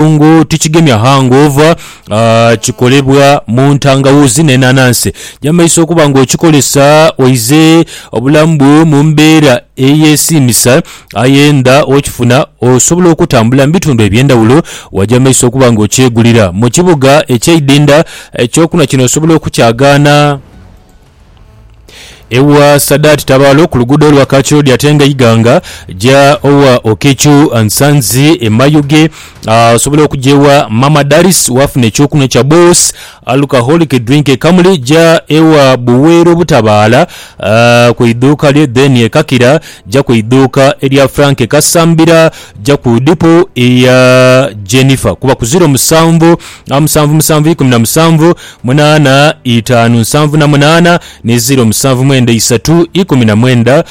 Ekirungo tikigemya hangover, kikolebwa mu ntangawuuzi n'enanansi. Gyamaiso okuba nga okikolesa oize obulamu bwo mu mbeera eyesiimisa aye nga okifuna osobola okutambula mu bitundu eby'endhawulo wa gyamaiso okuba nga okyegulira mu kibuga eky'eidhindha. Ekyokunhwa kino osobola okukyagaana. Ewa Sadati Tabalo ku luguudo lwa Kakyodi ate nga Iganga ja owa Okechu Nsanzi e Mayuge osobola okuja ewa Mama Daris wafuna ekyokunwa kya Boss Alcoholic Drink e Kamuli ja ewa Buweero Butabaala ku idhuuka lye then e Kakira ja ku idhuuka erya Frank Kasambira ja ku dipo eya Jennifer kuba ku ziro musanvu musanvu musanvu ikumi na musanvu munaana itaanu nsanvu na munaana ni ziro musanvu mwenda isatu ikumi na mwenda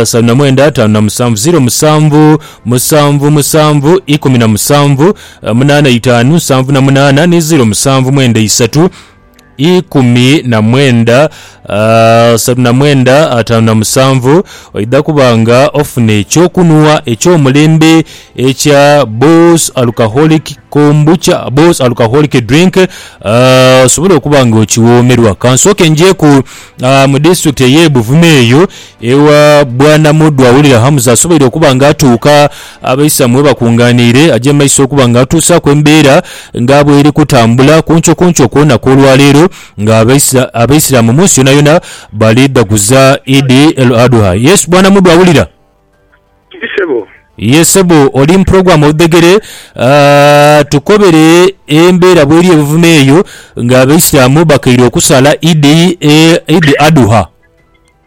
salu na mwenda taanu na musanvu ziro musanvu musanvu musanvu ikumi na musanvu munaana itaanu nsanvu na munaana ni ziro musanvu mwenda isatu ikumi na mwenda Asatu na mwenda ataanu na musanvu, oidha kuba nga ofuna eky'okunhwa eky'omulembe ekya Boss Alcoholic Kombucha, Boss Alcoholic Drink, osobole okuba nga okiwoomerwa. Ka nsooke njeku mu disitulikiti ey'e Buvuma eyo ewa Bwana Muddu Awulira Hamza asoboire okuba nga atuuka abaisamu webakungaaniire, aje mu maiso okuba nga atuusaaku embeera nga bw'eri kutambula ku nkyokunkyo kwona kw'olwaleero. Nga Abaisiramu mu nsi yonayona bali dhaguza Idi El Adhuha, Yesu bwana mudhu awulira. Kiri sebo. Ye sebo oli mu program odhegere. Tukobere embeera bweri ebuvuma eyo nga Abaisiramu bakaire okusala Idi Adhuha.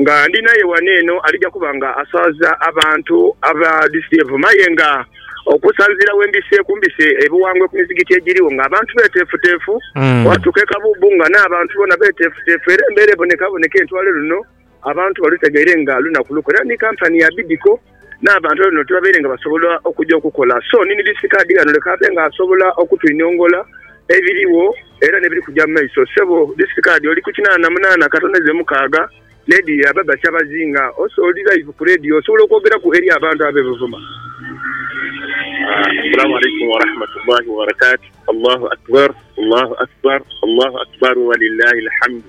nga ndi naye wano eno alija kuba nga aswaza abantu aba DCEVO maye nga okusanzira wembise kumbise ebiwangwe ku mizigiti egiriwo nga abantu betefutefu watuka ekabubu nga n'abantu bona betefutefu era embera ebonekaboneka entwale luno abantu balutegeire nga lunaku lukwe era ni company ya Bidco n'abantu ab'enhumilo tibabaire nga basobola okuja okukola. So ni Mr Kaadi ghano leka abe nga asobola okutuinhongola ebiligho era n'ebiri kuja mu maiso. Ssebo Disiti Kaadi oli ku kinaana munaana katoneze mukaaga leediyo ya Baba Kyabazinga. Ose oli laivu ku leediyo osobola okwogeraku eri abantu ab'e Buvuma? Assalamu Alaikum Warahmatullahi Wabarakatuh Allahu Akbar Allahu Akbar Allahu Akbar Walillahi Alhamdu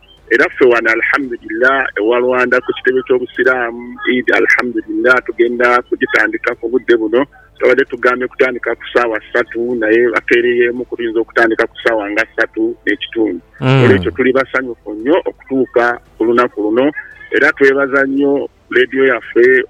Era ffe wano Alhamdulillah ewa Rwanda ku kitebe ky'obusiraamu Eid Alhamdulillah tugenda kugitandika ku budde buno. Twabadde tugambye kutandika ku saawa satu naye bakeereyeemu ku tuyinza okutandika ku saawa nga satu n'ekitundu. Olwekyo tuli basanyufu nnyo okutuuka ku lunaku luno era twebaza nnyo Radio yaffe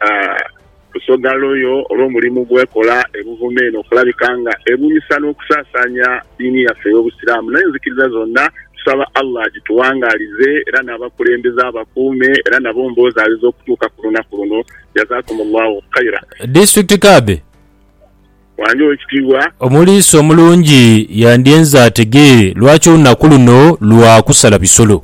Busoga Loyo olw'omulimu gw'ekola e Buvuma eno okulabika nga ebunyisa n'okusaasaanya diini yaffe ey'Obusiraamu n'enzikiriza zonna. Tusaba Allah agituwangaalize era n'abakulembeze abakuume era nabo mbozaalize okutuuka ku lunaku luno. Jazakumullahu khaira. District Kadhi. Wange ow'ekitiibwa. Omuliisi omulungi yandyenze ategeere lwaki olunaku luno lwa kusala bisolo.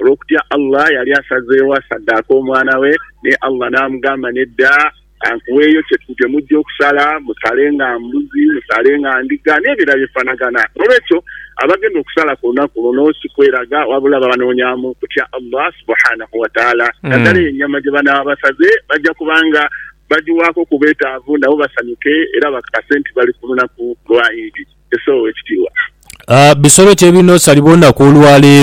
olw'okutya Allah, yali asazeegho asaddaake omwana we, naye Allah n'amugamba, Nedda, ka nkuweeyo kye kye mujja okusala, musale nga mbuzi, musale nga ndiga, n'ebirala bye bifanagana. N'olwekyo abagenda okusala ku lunaku luno si kweraga, wabula babanoonyaamu kutya Allah Subhaanahu wa Ta'aala. Naddala eyo ennyama gye banaaba basaze bajja kuba nga bagiwaako ku beetaavu nabo basanyuke era bakakase nti bali ku lunaku lwa Idi, Esswa ow'ekitiibwa. Bisolo ki ebirina osalibwa olunaku olwa leero?